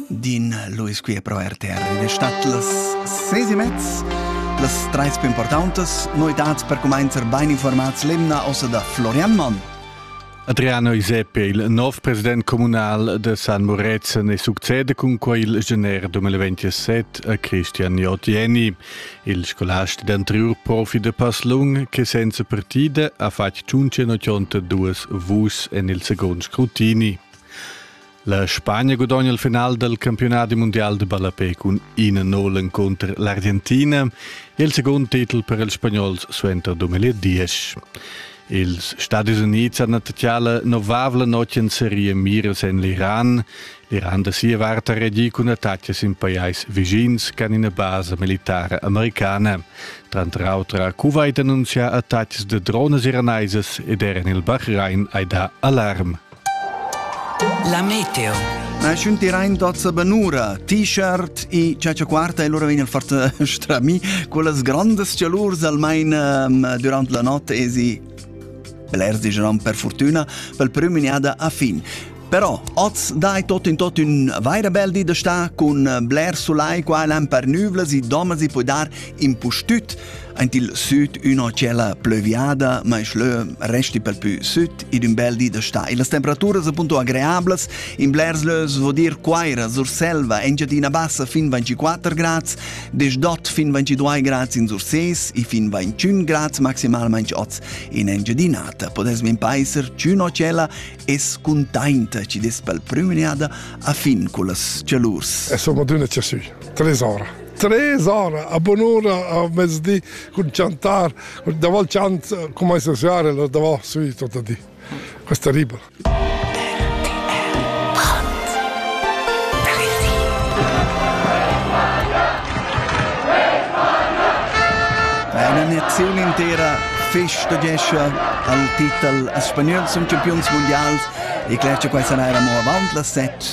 din Luis qui pro RTR ed stat las ses e mezz las treis più importantes novidades per cominciare ben informats l'emna ossa da Florian Mann Adriano Iseppe, il nov president comunal de San Morezen, ne succede cun quei il gener 2027 a Christian Jotieni, il scolast d'anterior profi de Paslung, che senza partida ha fatto 182 vus en il second scrutini. La Spagna gudogna il final del campionati mundial de ballapé cun 1-0 encunter l'Argentina e il secund titel per ils spagnols suenter 2010. Ils Stadis Unids han attacchà la novavla notg en serie Mires en l'Iran. L'Iran da sia vart ha reagì cun attacches in pajais vicins che han ina basa militara americana. Tranter auter ha Kuwait annunzià attacches de drones iranaisas ed er en il Bahrain hai dà alarm. La meteo. Schun tirain dozza benura, t-shirt e cecia quarta e lura vegn il fort strami con las grandes cialurs almain um, durant la notte e si blers digeran per fortuna pel prüm inada a fin. Però oz dai tot in tot un vaira bel di da sta cun blers sulai qua l'an per nüvlas e domas e poi dar in pustüt Aint il süd üna tschella plöviada, ma ich lö resti pel pü süd ed ün bel di da stà. E las temperaturas appunto agreablas, in blers lös vo dir Quaira, Surselva, Engiadina Bassa fin 24 grads, Desdot fin 22 grads in Surses e fin 21 grads maximalmaing oz in Engiadinata. Podes min paeser ch'üna tschella es cuntainta ci des pel prüm iniada a fin cullas cialurs. E soprattutto ci sü, 3 ora. Tres ora a bon'ora a mezdi cun chantar, davant chant come sesare la davant sui tutto di. Questa ribra. Eine Nation intera festegescha al titel spagnol zum Champions Mondials e clascha questa naira mo avant las set